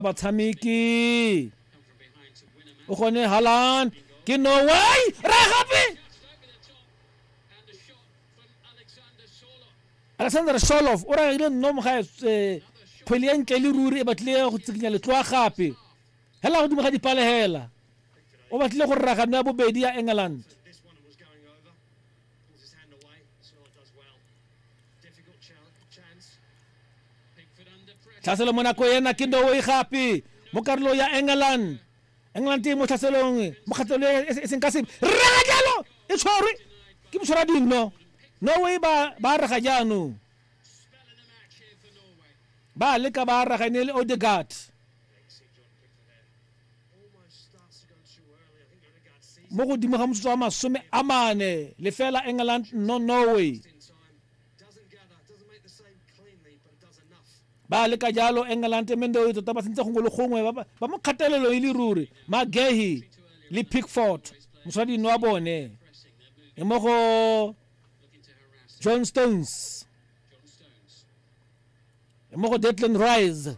batshameki o gone halan ke no way ra gape alexander sholov o ragile nno moga eh, kgwele ya ntle le ruri e batlile go tsikinya letloa gape hela godimo ga dipalegela o batlile go raga nna bobedi ya england tlhaselo mo nako ena ke ndoe gape mo karolo ya england england e mo tlhaselong mo kgatlelo e e seng ka sepe rega jalo e tshwarwe ke motshwara dingno norway ba ba rega jaanong ba leka ba rega e ne e le odegard mo godimo ga motsotso wa masome a mane lefela england no norway ba le ka jalo england mendoe tota ba sentse gongwe le gongwe ba mo kgatelelo e le ruri magehi le pickford moswadino wa bone e mo go john stones e mo go detland rise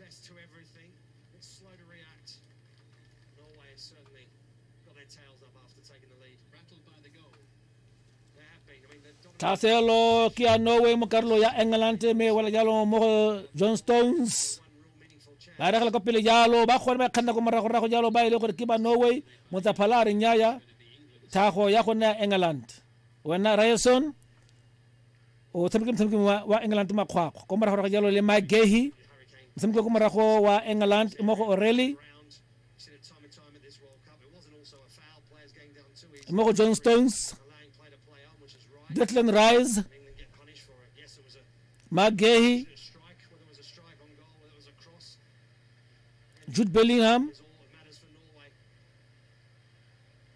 Best to everything, but slow to react. Norway has certainly got their tails up after taking the lead. Rattled by the goal. They have been. I mean, they've dominated. thaselo ke ya norway mo karolo ya england me wela jalo mo go john stones One real meaningful chance. ba regela kwa pele jalo ba kgone ba kganna ko moragorago jalo ba e le gore ke ba norway motsaphala a re nyaya thago ya go nna ya england wena raeson o tshameke motshameki wa, wa england makgwakgwa ko morago ga jalo le mike gahi motshameki ko morago wa england mo go orelli mo go john stones declan rise mike gahi jude bellingham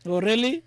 orelli